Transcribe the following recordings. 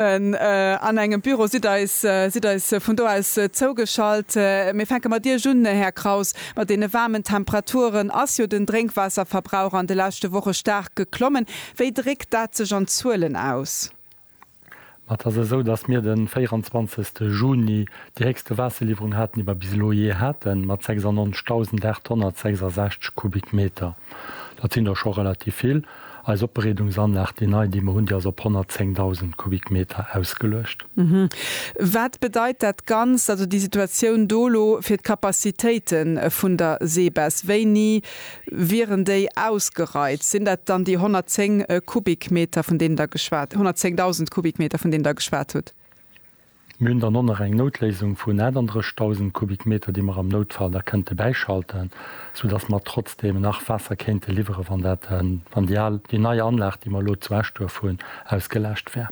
An engem Büro sidd eis sidd eis vun do aus zougeschalt. Mir fänke mat Iech un, Här Kraus, mat deene waarmen Temperaturen ass jo den Drénkwaasserverbrauch an de leschte Woche staark geklommen. Wéi dréckt dat sech an Zuelen aus? Ma et ass esou, datt mir de 24 Juni déi héchste Waasserliwwerung haten, déi mer bis elo jee haten, mat 96.866 Kubikmeter. Dat sinn der scho relativ vill. Eis Opbereedungsanlag, déi nei, déi mer hunn, déi ass op 110.000 Kubikmeter ausgeluecht. Wat bedeit dat Ganzt, also déi Situatioun do elo, fir d'Capacitéite vun der Seebess? Wéini wieren déi ausgereizt? Sinn dat dann déi 110 Kubikmeter, vun deenen Der geschwat, 110.000 Kubikmeter, vun deenen Der geschwat hutt? Mir hunn dann och nach eng Noutléisung vun 38.000 Kubikmeter, déi mer am Noutfall da kënnte bäischalten, soudass mer trotzdeem nach Waasser kéinte liwweren, wann dat, wann déi al, déi nei Anlag, déi mer elo zu Eschduerf hunn, ausgelaascht wär.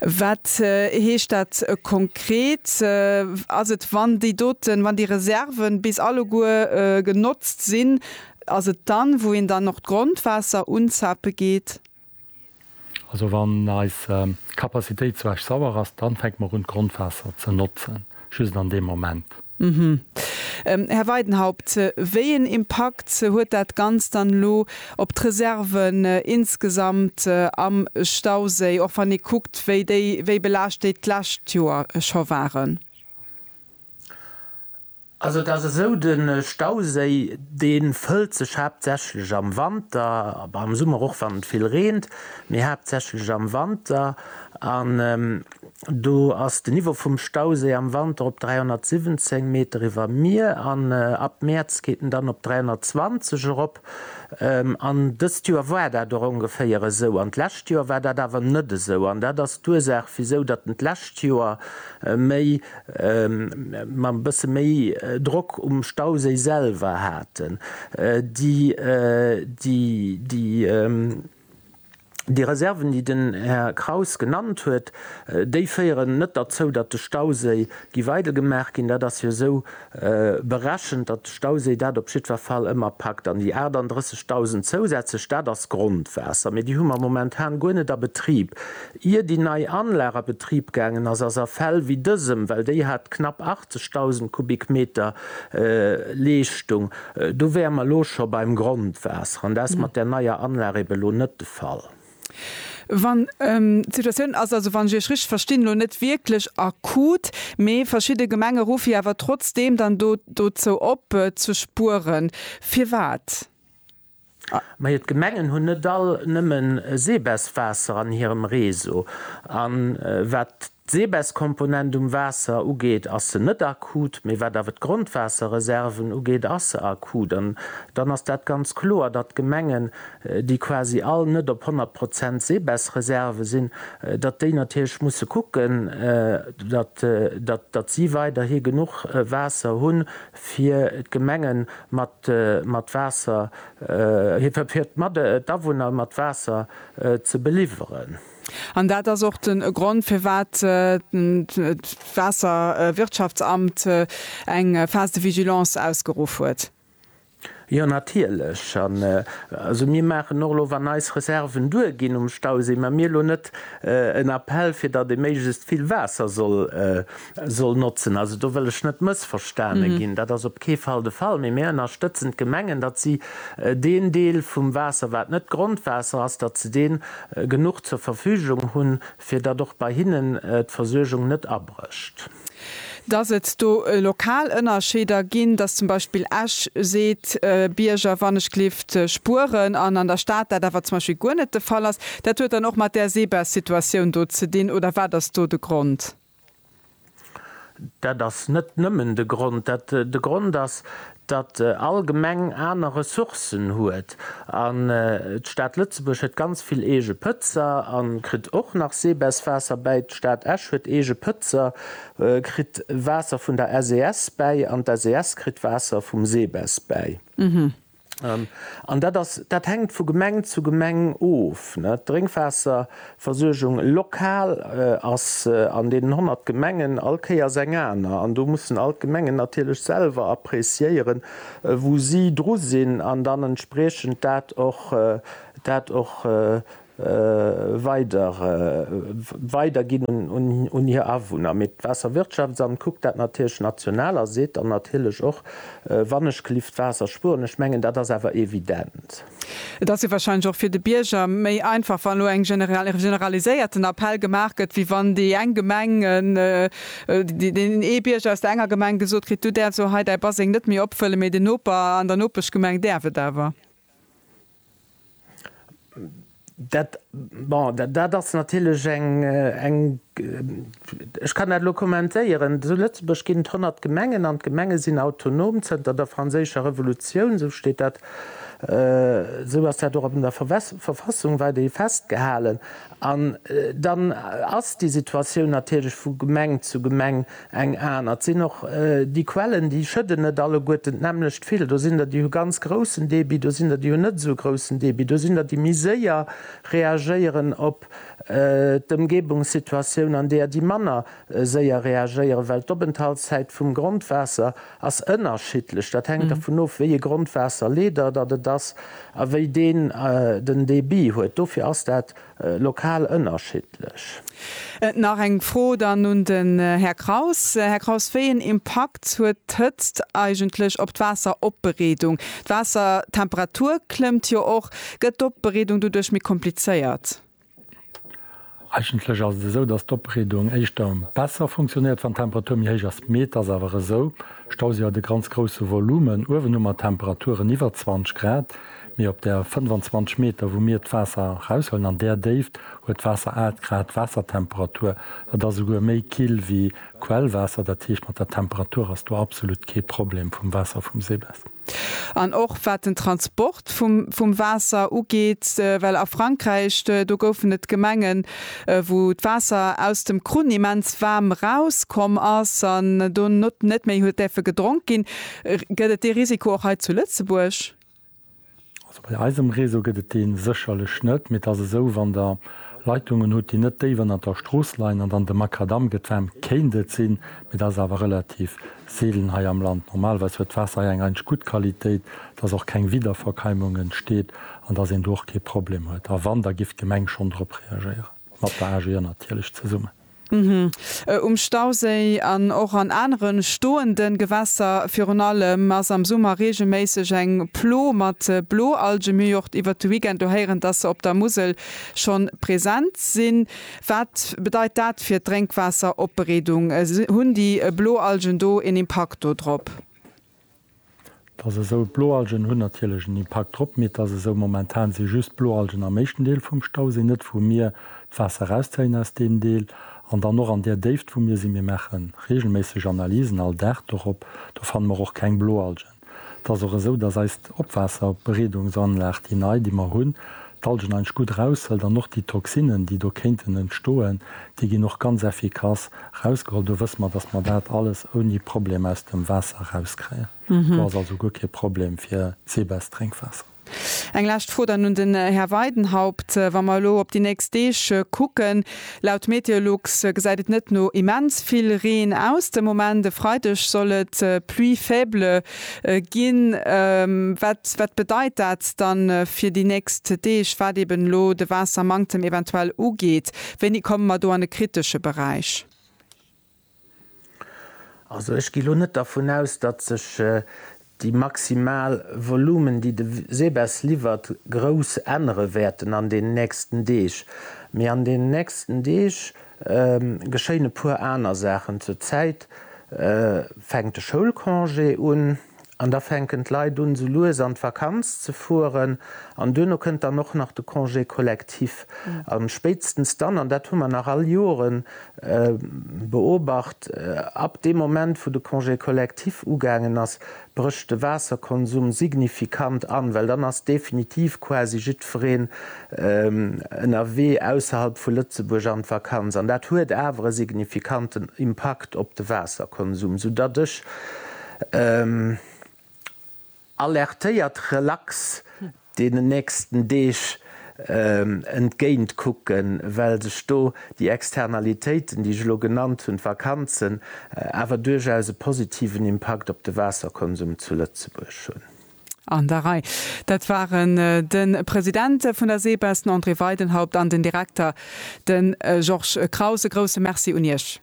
Wat heescht dat konkret? Ass et, wann déi doten, wann déi Reserven bis alleguer genotzt sinn, ass et dann, wou een dann och d'Grondwaasser unzape geet? Also wann eis Kapazitéit zu Esch-Sauer ass, dann fänke mer un d'Grondwaasser ze notzen, just an deem Moment. Här Weidenhaupt, wéi een Impakt huet dat Ganzt dann elo op d'Reserven insgesamt am Stauséi, och wann ee kuckt, wéi déi, wéi belaascht déi d'lescht Joer scho waren? Also et ass esou, de Stauséi dee fëllt sech haaptsächlech am Wanter, ma am Summer och wann et vill reent, mee haaptsächlech am Wanter. An do ass den Niveau vum Stauséi am Wanter op 317 Meter iwwer Mier an ab Mäerz geet en dann op 320 erop. An dëst Joer war dat och ongeféier esou. An d'lescht Joer war dat awer net esou. An dat ass d'Ursaach, wisou datt en d'lescht Joer méi, ma e bësse méi Drock um Stauséi selwer haten, déi, déi. Déi Reserven, déi den Här Kraus genannt huet, déi féieren net derzou, datt de Stauséi giff eidel gemaach ginn. Dat ass jo esou berechent, datt de Stauséi dat op jiddwer Fall ëmmer packt. An déi 38.000 zousätzlech, dat ass Grondwaasser. Mee déi hu mer momentan guer net a Betrib. Ier déi nei Anlag a Betrib gaangen ass, ass a Fäll wéi dësem, well déi hat knapp 80.000 Kubikmeter Leeschtung, do wäre mer elo scho beim Grondwaasser, an dat ass mat där neier Anlag ebe elo net de Fall. Wann d'Situatioun ass also, wann ech Iech richteg verstinn, elo net wierklech akut, mee verschidde Gemenge ruff Iech awer trotzdeem dann do dozou op, ze spueren. Firwat? Mä et Gemengen hunn net all nëmmen Seebeswaasser an hirem Réseau. A wat d'Seebeskomponent um Waasser ugeet, ass se net akut. Mä wat awer d'Grondwaasserreserven ugeet, ass se akut. An dann ass dat ganz kloer, datt d'Gemengen, déi quasi all net op 100 Prozent Seebesreserve sinn, datt déi natierlech musse kucken, datt si weiderhi genuch Waasser hunn, fir d'Gemenge mat Waasser, fir d'Awunner mat Waasser ze beliwweren. An dat ass och de Grond, firwat d'Waasserwirtschaftsamt eng Phase de vigilance ausgeruff huet. Jo natierlech, an also mir maachen och elo, wann eis Reserven duer ginn um Stauséi, mä mir elo net en Appell fir datt ee méiglechst vill Waasser soll notzen. Also do wëll ech net mëssverstane ginn, dat ass op kee Fall de Fall, mee mir ënnerstëtzen d'Gemengen, datt si deen Deel vum Waasser wat net Grondwaasser ass, datt se dee genuch zur Verfügung hunn, Fir datt och bei hinnen d'Versuergung net abrécht. Datt et do lokal Ënnerscheeder ginn, datt zum Beispill Esch seet, Bierger, wann ech gelift spueren, an an der Stad dat awer zum Beispill guer net de Fall ass, dat huet dann och mat där Seebasssituatioun do ze dinn, oder wat ass do de Grond? Dat ass net nëmmen de Grond. Dat de Grond ass, datt all Gemeng aner Ressourcen huet. An d'Stad Lëtzebuerg huet ganz vill eege Pëtzer a kritt och nach Seebässwaasser bäi. D'Stad Esch huet eege Pëtzer, kritt Waasser vun der SES bäi an d'SES kritt Waasser vum Seebäss bäi. An dat hänkt vu Gemeng zu Gemeng of. D'Drénkwaasserversuergung lokal ass an deenen 100 Gemengen all Kéiers eng aner. An do mussen all d'Gemengen natierlech selwer appréciéieren, wou si dru sinn an dann entspriechend dat och weider weider ginn un hir Awunner. Mee d'Waasserwirtschaftsamt kuckt dat natierlech national a seet dann natierlech och, wann ech gelift Waasser spueren. Ech mengen, dat ass awer evident. Et ass jo wahrscheinlech och fir de Bierger méi einfach, wann elo eng generaliséierten Appell gemaach gëtt, wéi wann déi eng Gemeng, deen ee Bierger aus der enger Gemeng gesot kritt, du däerfs elo hei däi Baseng net méi opfëllen, mee den Noper an der Nopeschgemeng däerf et awer. Dat, bon, dat ass natierlech eng, eng, ech kann dat elo kommentéieren, zu Lëtzebuerg ginn et 100 Gemengen an d'Gemenge sinn autonom zënter der Franséischer Revolutioun, esou steet dat, esou ass dat och an der Verfassung weiderhi festgehalen. An dann ass déi Situatioun natierlech vu Gemeng zu Gemeng Eng aner, et sinn och déi Quellen, déi schëdden net alleguerten d'nämmlecht vill. Do sinn der, déi hu ganz groussen Débit, do sinn der, déi hunn net esou e groussen Débit, do sinn der, déi méi séier reagéieren op d'Ëmgebungssituatioun an deeër, déi manner séier reagéieren, well d'Openthaltszäit vum Grondwaasser ass ënnerschiddlech. Dat hänkt dervun of, wéi e Grondwaasserleeder datt et ass a wéi deen den Débit huet. Dofir ass dat. Lokal ënnerschiddlech. Nach eng Fro dann un den Här Kraus. Här Kraus, wéi een Impakt huet d'Hëtzt eigentlech op d'Waasseropbereedung? D'Waassertemperatur klëmmt jo och. Gëtt d'Opbereedung doduerch méi komplizéiert? Eigentlech ass et esou, datt d'Opbereedung éischter besser funktionéiert, wann d'Temperatur méi héich ass. Mee et ass awer esou, Stauséi huet e ganz grousse Volumen. Uewenhu mat Temperaturen iwwer 20 Grad Mee op där 25 Meter, wou mir d'Waasser eraushuelen, an där Déift huet d'Waasser 8 Grad Waassertemperatur. Dat ass esouguer méi kill wéi Quellwaasser. Dat heescht, mat der Temperatur ass do absolut kee Problem vum Waasser vum Seebest. An och wat den Transport vum Waasser ugeet, well a Frankräich, do goufen et Gemengen, wou d'Waasser aus dem Krunn immens waarm erauskomm ass an do net méi huet däerfe gedronk ginn. Gëtt et dee Risiko och hei zu Lëtzebuerg? Also bei eisem Réseau gëtt et dee sécherlech net, mee et ass esou, wann Der Leitungen hutt, déi net déif ënnert der Strooss leien an dann de Makadamm gëtt waarm, kéint et sinn, mee dat ass awer relativ seelen hei am Land. Normalerweis huet d'Waasser hei eng eigentlech gutt Qualitéit, dass och keng Wiederverkeimung entsteet an dass een do och kee Problem huet. A wann, da giff d'Gemeng schonn drop reagéieren. Mat der AG an natierlech zesummen. Um Stauséi an och an anere stoende Gewässer virun allem ass am Summer reegelméisseg eng Plo mat Bloalgen. Mir hu jo och iwwert de Weekend do héieren, dass se op der Musel schonn present sinn. Wat bedeit dat fir d'Drénkwaasseropbereedung? Hunn déi Bloalgen do een Impakt dodrop? Dass esou d'Bloalgen hunn natierlech en Impakt drop, mee et ass esou, momentan si just d'Bloalgen am éischten Deel vum Stau, sinn net wou mir d'Waasser erauszéien aus deem Deel an dann och an där Déift wou mir sinn. Mir maache reegelméisseg Analysen, all Dag dorop, do fanne mer och keng Bloalgen. Et ass och esou, dass eis Opwaasserbereedungsanlag, déi nei, déi mer hunn, d'Algen eigentlech gutt eraushëlt an och déi Toxinen, déi do kéinten entstoen, déi ginn och ganz effikass erausgeholl. Do wësse mer, dass mer dat alles ouni Problem aus dem Waasser erauskréien. Do ass also guer kee Problem fir d'Seebäsdrénkwaasser. Eng lescht Fro dann un den Här Weidenhaupt. Wa mer elo op déi nächst Deeg kucken, laut Meteolux gesäit et net no immens vill Reen aus de Moment. E Freideg soll et pluie faible Ginn. Wat bedeit dat dann fir déi nächst Deeg, wat eben elo de Waassermanktem eventuell ugeet? Wéini komme mer do an de kritesche Beräich? Also ech gi lo net dervun aus, datt sech déi maximal Volumen, déi de Seebess liwwert, grouss ännere wäerten an deenen nächsten Deeg. Mee an deenen nächsten Deeg geschéien e puer aner Saachen. Zur Zäit fänkt de Schoulcongé un an da fänken d'Leit un, sou lues an d'Vakanz ze fueren. An duerno kënnt dann och nach de Congé collectif. A spéitstens dann, an dat hu mer nach all Jore beobacht, ab deem Moment, wou de Congé collectif ugaangen ass, brécht de Waasserkonsum signifikant an, well dann ass definitiv quasi jiddwereen ënnerwee ausserhalb vu Lëtzebuerg an d'Vakanz. An dat huet awer e signifikanten Impakt op de Waasserkonsum, soudatt ech alertéiert relax deenen nächsten Deeg entgéint kucken, well sech do déi Externalitéiten, déi ech elo genannt hunn, d'Vakanzen, awer duerchaus e positiven Impakt op de Waasserkonsum zu Lëtzebuerg hunn. An der Rei. Dat waren de President vun der SEBES, den André Weidenhaupt, an den Direkter, de Georges Kraus. E grousse Merci un Iech.